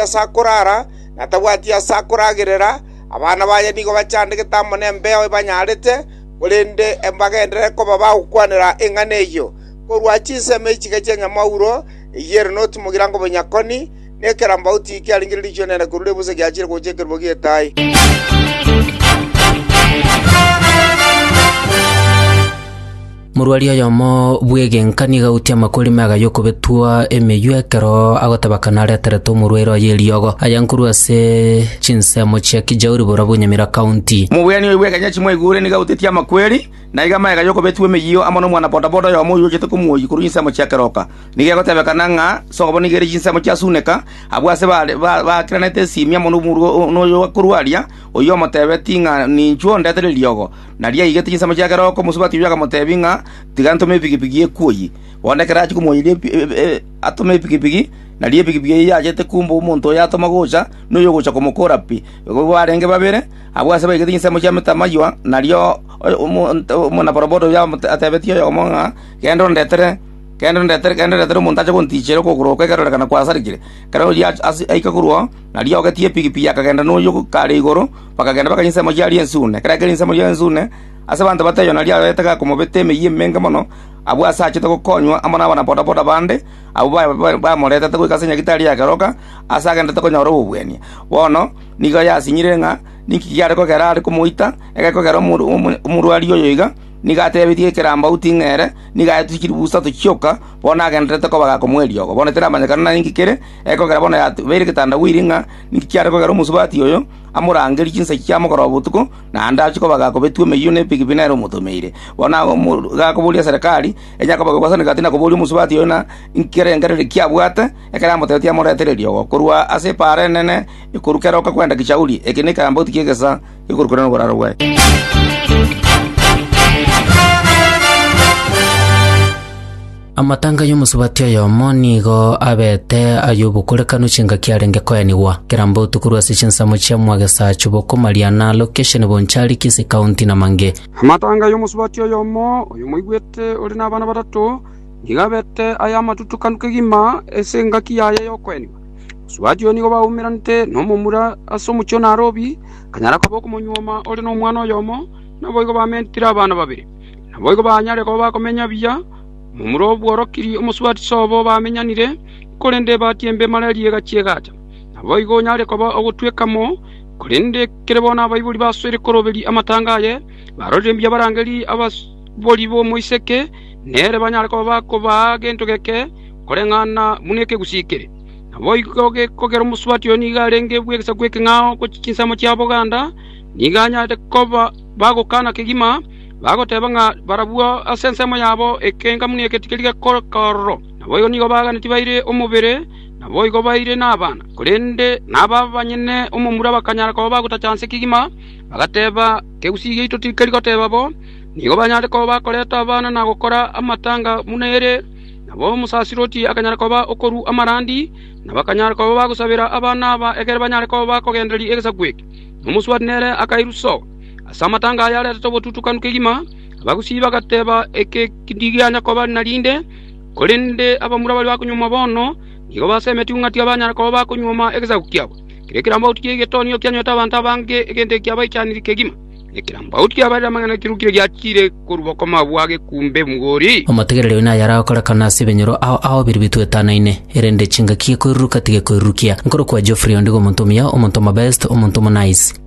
ase akoraara, na tabwati ase akoragerera, abana baye nigo bachandegete amo nembeo ebanyarete, korende mbagenderere koba bagokwanera eng'ana eyio. Korwa chinsemo echiga chi'enyamwauro eyere noti mogirango bonyakoni, na ekerambauti kiaringire riichwe ri'enene korwa ribusa giachire gocha ekerogo gi'etaai. Morwari oyomo bw'egenka nigo agoutie amakori mega y'okobetwa emeywo ekero agotebaka nareterete omorwaire oye eriogo, ayanga korwa ase chinsemo chia Kijauri borobwo Nyamira County. Omogwenia oyo bw'ekenya chimwaigure nigo agoutetie amakweri na iga mega y'okobetwa emeyio amo nomwana bodaboda oyomo oyio ochete komuoyia korwa insemo chia keroka. Nigo egotebekana ng'a sobo nigo ere chinsemo chia Suneka abwo ase baakiranete esimi amo nomorwari oyo korwa aria, oyio omotebeti ng'a ninchuo ndete reriogo. na riaigete chinsemo chia kerogo, omosubati oyio akamotebia ng'a, Tiga ntome epigipigi eye kwoyi. Bono ekero achia komoiyeria atome epigipigi, nari epigipigi eye yachete kumba omonto oyo atoma gocha, na oyogocha komokora pi. Igo barenge babere abwo aase baigete chinsemo chia metamaiywa, nario omwanabodaboda oyio atebetie oyomo ng'a, Genda ondetere, genda ondetere, genda ondetere omonto ache gontiichera okogoro oko ekerorekana kwasarigire. Ekero oyio aika korwa oo, nario ogetie epigipigi akagenda noyio kare igoro. Bakagenda bakanyia ensemo y'Aria Ensune. Ekero akeire ensemo y'Aria Ensune, ase abanto batayo Yohana aria arorete gakomobeta emeyia emenge mono, abwo ase achete gokonywa amo nabana bodaboda bande, abwo bamoretete goika ase Nyagitari ya keroka, aase agenderete konyora obobwania. Bono nigo yasinyire ng'a ninki kiare kogera are komoita, ekero kogera omorwari oyo iga, nigo atebetie ekerambagu ting'a ere, nigo aetwe chilifu isato chioka, bono agendererete koba gakomoa eriogo. Bono tiramanyekana nainki kere, ekero kogera bono yabeire egetanda bweiri ng'a ninki kiare kogera omosubati oyo, amorangerie chinsa chia mogoroba botuko, naende achie kobaga kobetwa emeyio nebigibi nere omotomeire. Bono agwo gakoboria Serikali, enyare kobaga gwasana egati na koboria omosubati oyo ng'a inki erengererio kiabwate, ekero amotebetie amoretererie ogo korwa ase epaara enene ekoru kera okakwenda kichauri. Eke nekeambauti ki'egesa gekoru korende noboraro bwaye. Amatanga y'omosubati oyomo nigo abete ay'obokorekanu chingaki arenge koenigwa, keramba otuko rwa ase chinsemo chia Mwagesaachwa bokomaria na Location Bonchari Kisii County na mange. Amatanga y'omosubati oyomo oyomoigwete ore nabana batato nigo abete ay'amatutukanu kegima ase engaki yaye y'okoenigwa. Mosubati oyo nigo baumeranete nomomura ase omochie o Narobi, akanyara koba okomonyuoma ore nomwana oyomo, naboigo bamentire abana babere. Naboigo banyare koba bakomenya buya, Momura obworokirie omosubatiso obo bamenyanire, korende ebati embe mara eriiga chi'egaacha. Naboigo onyare koba ogotweka mo, korende kere bono abaibori basoire koroberia amatanga aye, barorire mbuya abarangeri ababori b'omoiseke, nere banyare koba bakobaa gento geke koreng'ana buna ekegusii kere. Naboigo gekogera omosubati oyo nigo arenge bw'egesaku ekeng'ao gochia chinsemo chia boganda, nigo anyare koba bagokana kegima, Bagoteeba ng'a barabwo ase ensemo yabo ekengamu negetigiri gekororo, naboigo nigo baganetie baire omobere, naboigo baire nabana. Korende naba banyene omomura bakanyara koba bagotacha nse kegima, bagateeba, Ekegusii giaito tikeri goteeba bo, nigo banyare koba bakoreta abana na gokora amatanga buna ere. Nabo omosaserdoti akanyara koba okorua amarandi, na bakanyara koba bagosabera abana aba ekero banyare koba bakogendereria egesaku eke. Na omosubati nere akairusia. Ase amatanga aya aretete obotutukanu kegima, abagusii bagateba eke ndigianya koba narinde, korende abamura baria bakonyuoma bono nigo basemeti ng'a tibanyara koba bakonyuoma egesaku kiabo. Kera ekerambaoti ki'egetonio kianyorete abanto abange egento eki abaichanire kegima, na ekerambaoti kiabarire amang'ana kirukire giachiire korwa bokong'u abwo age kumbe mgori. Omotegereri oino naye aragokorekana ase ebenyoro ao ao biria bitwetanaine, erende chingaki gekoiruruka tigekoirurukia. Nkorokwa Geoffrey ondigo omonto omuya, omonto omobest, omonto omonice.